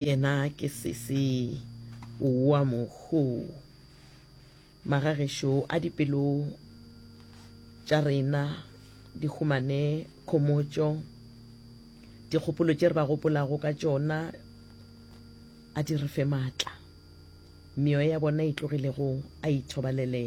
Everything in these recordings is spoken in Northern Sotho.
Yena ke sese wa mohu. Magagešo a dipelo tša rena di humane khomotšo, dikgopolo tše re ba gopolago ka tšona a di re fe maatla, meoya ya bona e tlogilego a ithobalele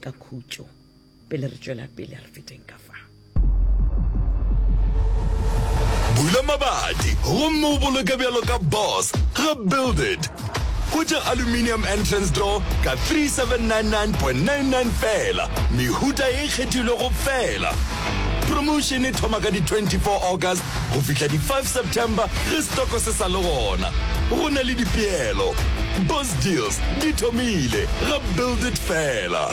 ka khutšo. pele re tšwela pele re feteng ka fa bula mabati gomme o boloke bjalo ka boss ga build it go tša aluminium entrance door ka 3799.99 fela mehuta e kgethilwego fela promotion e thoma ka di-24 august go fihla di-5 september ge stoko se sa le gona go na le dipeelo bos deals di thomile ga build it fela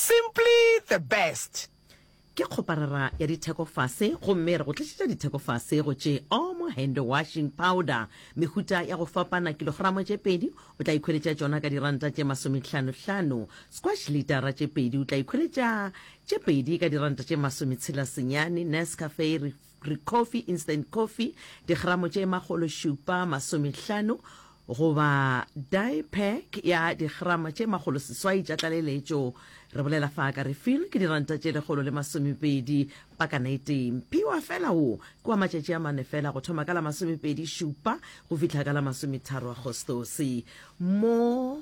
Simply the best! Ke kgoparara ya ditheko fase gomme re go tlišetša ditheko fase go tše Omo Hand Washing Powder mehuta ya go fapana kilogramo tše pedi o tla ikhweletša tšona ka diranta tše masometlhano hlano, Squash litara tše pedi o tla ikhweletša tše pedi ka diranta tše masometshela senyane, Nescafe Greek coffee, instant coffee, digramo tše makgolo šupa masomehlano, goba die pack ya digrama tše makgolo seswai tša tlaleletšo. Re bolela fa ka refill ke diranta tše lekgolo le masomepedi pakana e tee. Mphiwa fela wo ke wa matšatši a mane fela go thoma ka la masomepedi šupa go fihla ka la masometharo Agostose. Mo.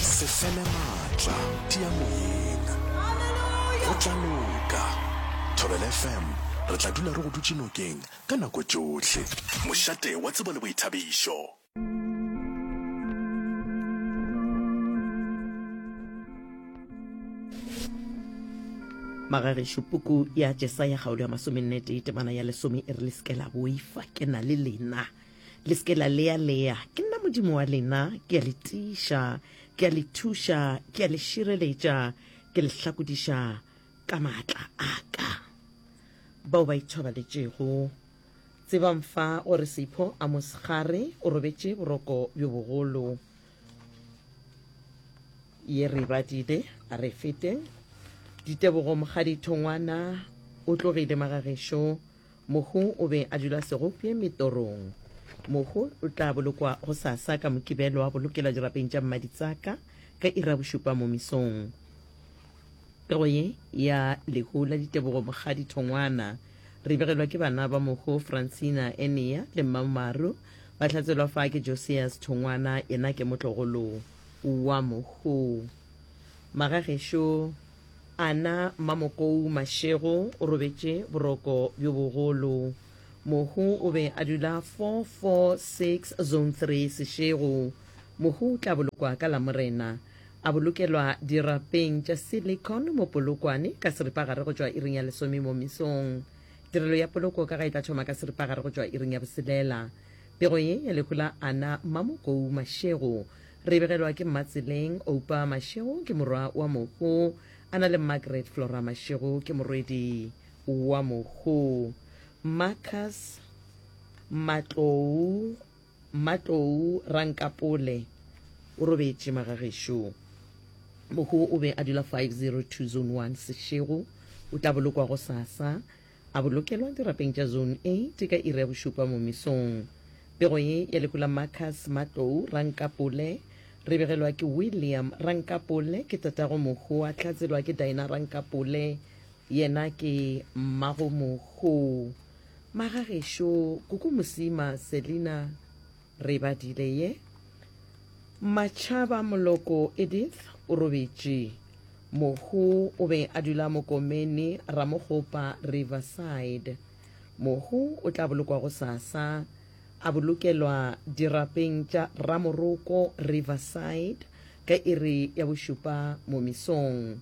Se fele maatla, tia moyeng. Go tla loka. Thobela FM, re tla dula re go dutše nokeng ka nako tšohle. Mošate wa tsebo le boithabišo. Magagešo, puku ya Jesaya kgaolo ya masomenne tee temana ya lesome e re le se ke la boifa ke na le lena. Le se ke la lea-lea, ke nna Modimo wa lena, ke a le tiiša, ke a le thuša, ke a le šireletša, ke le hlakodiša ka maatla a ka. Bao ba ithobaletšego, tsebang fa gore Seipho a mosegare o robetše boroko bjo bogolo. Ye re badile, a re feteng. Ditebogo, Mokgadi Thongwana o tlogile magagešo. Mohu o be a dula segopje metorong. Mohu o tla bolokwa go sasa ka Mokibelo wa bolokela dirapeng tša mmaditsaka ka ira bošupa mo mesong. Pego ye ya lehu la ditebogo Mokgadi Thongwana re begelwa ke bana ba Mohu Francina Enea le Mmammaru ba hlatselwa fa ke Josias Thongwana yena ke motlogolo wa Mohu. Magagešo, Ana Mmamokou Mashego o robetše boroko bjo bogolo. Mohu o be a dula 446 Zone 3 Seshego. Mohu o tla bolokwa ka Lamorena. A bolokelwa dirapeng tša Silicon mo Polokwane ka seripagare go tšwa iring ya lesome mo mesong. Tirelo ya poloko ka ga e tla thoma ka seripagare go tšwa iring ya boselela. Pego ye ya lehu la Ana Mmamokou Mashego Re begelwa ke Mmatseleng Oupa Mashego, ke morwa wa Mokgo, a na le Margaret Flora Mashego, ke morwedi wa Mokgo. Marcus Matlou Matlou Rankapole o robetše magagešo. Mokgo o be a dula 502 Zone 1 Seshego. O tla bolokwa gosasa. a bolokelwa dirapeng tša Zone A tše ka iri ya bošupa mo mesong. Pego ye ya lehu la Marcus Matlou Rankapole, re begelwa ke William Rankapole, ke tatago mohu, a hlatselwa ke Dinah Rankapole, yena ke mmago mohu. Magagešo, Kuku Mosima, Selina. Re badile ye. Matšhaba Moloko Edith o robetše. Mohu o be a dula Mokomeni Ramogopa Riverside. Mohu o tla bolokwa go sasa. A bolokelwa dirapeng tša Ramoroko Riverside ka iri ya bošupa momisong.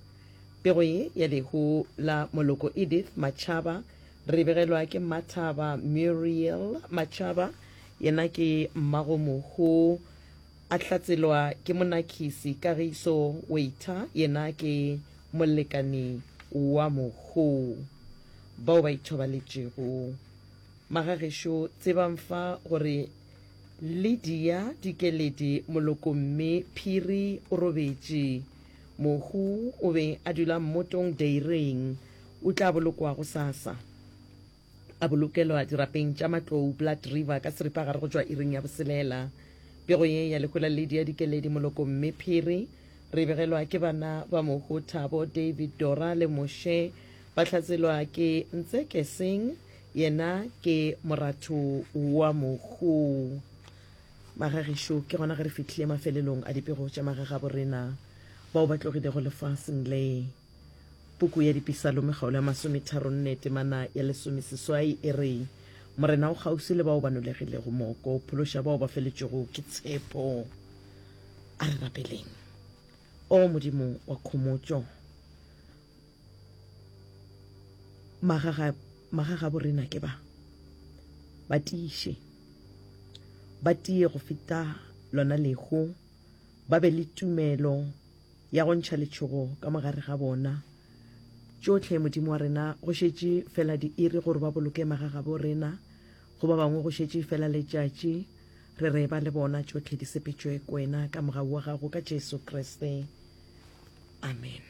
Pego ye ya lehu la Moloko Edith Matšhaba re begelwa ke Mathaba Muriel Matšhaba Yena ke Mmagomohu, a hlatselwa ke Monakhisi Kagiso Waiter, yena ke molekani wa Mohu. Bao ba ithobaletšego. Magagešo tsebang fa gore Lydia Dikeledi Molokomme Phiri o robetše. Mohu o be a dula Mmotong Dairying. O tla bolokwa gosasa. A bolokelwa dirapeng tša Matlou, Blood River, ka seripagare go tšwa iring ya boselela. Pego ye ya lehola ledi ya dikeledi moloko mme phiri. Re e begelwa ke bana ba mohu Thabo, David, Dora le Moshe. Ba hlatselwa ke Ntseke Singh, yena ke moratho wa mohu. Magagešo, ke gona ge re fihlile mafelelong a dipego tša magagaborena bao ba tlogilego lefaseng le. Puku ya Dipisalome kgaolo ya masometharonne temana ya lesomeseswai e re, Morena o kgauswi le bao ba nolegilego moko, o phološa bao ba feletšwego ke tshepo. A re rapeleng. O Modimo wa khomotšo, magagabo rena ke ba ba tiiše, ba tie go feta lona lehu, ba be le tumelo Ya go ntšha letšhogo ka mogare ga bona. Tšohle, Modimo wa rena, go šetše fela diiri gore ba boloke magagabo rena. Go ba bangwe go šetše fela letšatši. Re re ba le bona tšohle di sepetšwe Kwena ka mogau wa gago ka Jesu Kriste. Amen.